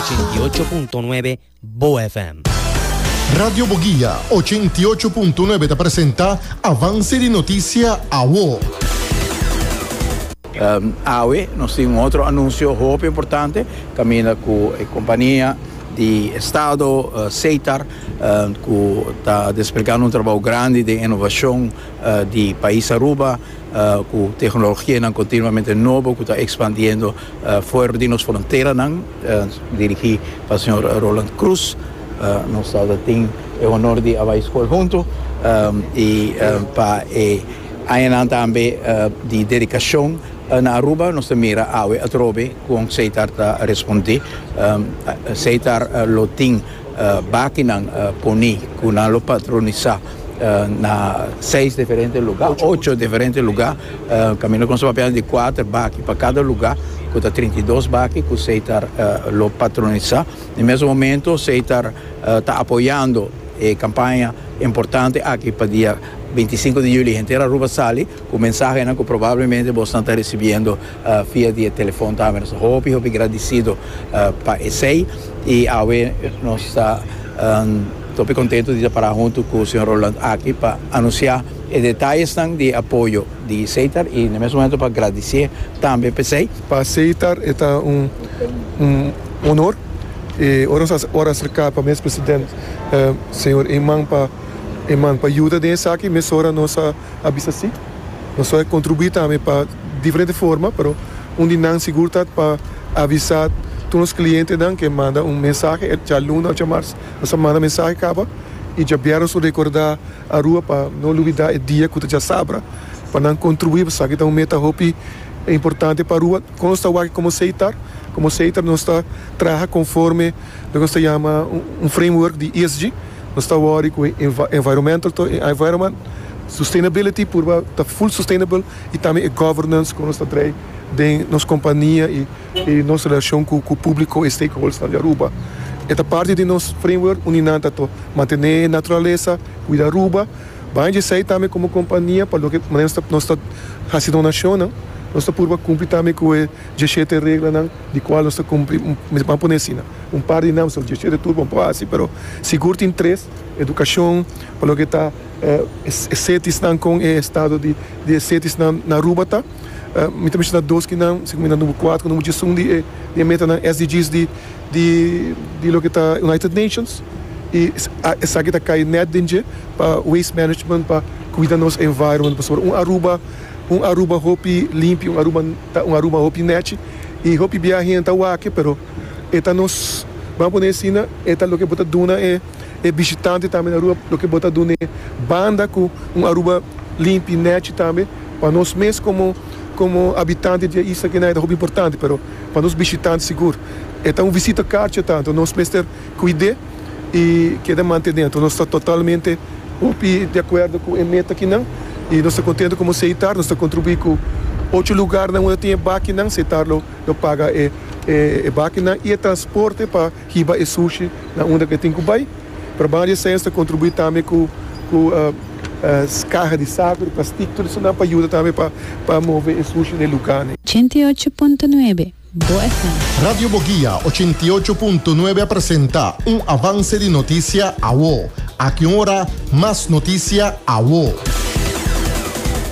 Ochenta i ocho punto nuebe Bo FM. Radio Boguia ochenta i ocho punto nuebe ta presenta Avance di Noticia Awo. Awe nos tin un otro anuncio hopi importante caminda cu e compania di estado Setar cu ta desplegando un trabajo grandi den innovacion di pais Aruba cu tehnologianan continuamente nobo cu ta expandiendo For di nos fronteranan, dirigí pa señor Roland Croes, nos tabata tin e honor di a bai skol huntu, i pa e añanan tambe di dedikashon na Aruba, nos ta mira awe atrobe kon Seitar ta respondé. Seitar lo tin. Bakinan poni ku nan lo patronisá na seis diferente lugá, ocho diferente lugá, kaminda kon su papia di kuater baki pa kada lugá ku ta trinta i dos baki ku sei ta lo patronisá. Na e mesun momento sei ta ta apoyando e kampaña importante aki pa dia binti i sinku di yuli henter Aruba sali. Ku mensahenan ku probablemente bo esnan ta risibiendo via di e telefòn tambe. Nos ta hopi hopi gradisido pa esei. I awe nos ta hopi kontentu di ta pará huntu ku señor Roland aki pa anunsiá e detayesnan di e apoyo di Seitar i na mes momentu pa gradisié tambe pa esei. Pa Seitar e ta un onor. I ora nos a ora aserká pa mes president señor Eman pa Eman pa yuda den esaki mesora nos a. a bisa si. Nos lo a kontribuí tambe pa diferente forma, pero un di nan sigur ta pa avisá tur nos klientenan ku e manda un mensahe e djaluna òf djamars. Nos a manda mensahe kaba i djabièrnè nos lo rekordá Arua pa no lubidá e dia ku ta djasabra pa nan kontribuí pasobra aki ta un meta hopi importante pa Arua. Kon nos ta wak komo Seitar? Komo Seitar nos ta traha konforme loke nos ta yama un framework di ESG. Nos ta wòri ku e environmental to e environment sustainability purba ta full sustainable i tambe e governance ku nos ta drai den nos kompania i i nos relashon ku ku públiko e stakeholdersnan di Aruba. E ta parti di nos framework uni nan ta to mantené e naturalesa, kuida Aruba. Baña di esei tambe komo kompania pa loke manera nos ta nos ta hasi donashonnan nos ta purba kumpli tambe ku e diesshete reglanan di kual nos ta kumpli, mi ban pone asina. un par di nams, dje siete tur bo por hasi, pero sigur tin tres, edukashon, pa loke ta e setisnan, kon e estado di e setisnan na Aruba ta. Mi ta menshona dos ki nan, si ku mi ta number kuater, ku number djesun di e metanan SDGs di loke ta United Nations, i esaki ta kai nèt den dje, pa waste management, pa kuida nos environment, pasobra un Aruba, un Aruba hopi limpi, un Aruba ta un Aruba hopi nèchi, i hopi bia hende ta wak e, pero. e ta nos, bam a pone asina, e ta loke bo ta duna e e bishitante tambe na Aruba, loke bo ta dun'e banda ku un Aruba limpi, nechi tambe. Pa nos mes komo komo habitante di e isla kina e ta hopi importante, pero pa nos bishitante sigur e ta un visita karchi ta, anto nos mester kuid'é i keda mantené. Anto nos ta totalmente hopi di akuerdo ku e meta kinan i nos ta kontentu komo Seitar nos ta kontribuí ku ocho lugarnan unda tin e bakinan, Seitar lo. Lo paga e bakinan y e transporte pa hiba e sushi na unda cu e tin cu bay. Pero banda di esey nos ta contribui tambe cu caha di saco, di plastic, tur esun nan pa yuda tambe pa move e sushi na e lugarnan. Ochenta i ocho punto nuebe Bo FM. Radio Boguia ochenta i ocho punto nuebe a presenta un avance di noticia awo. Aki un ora mas noticia awo.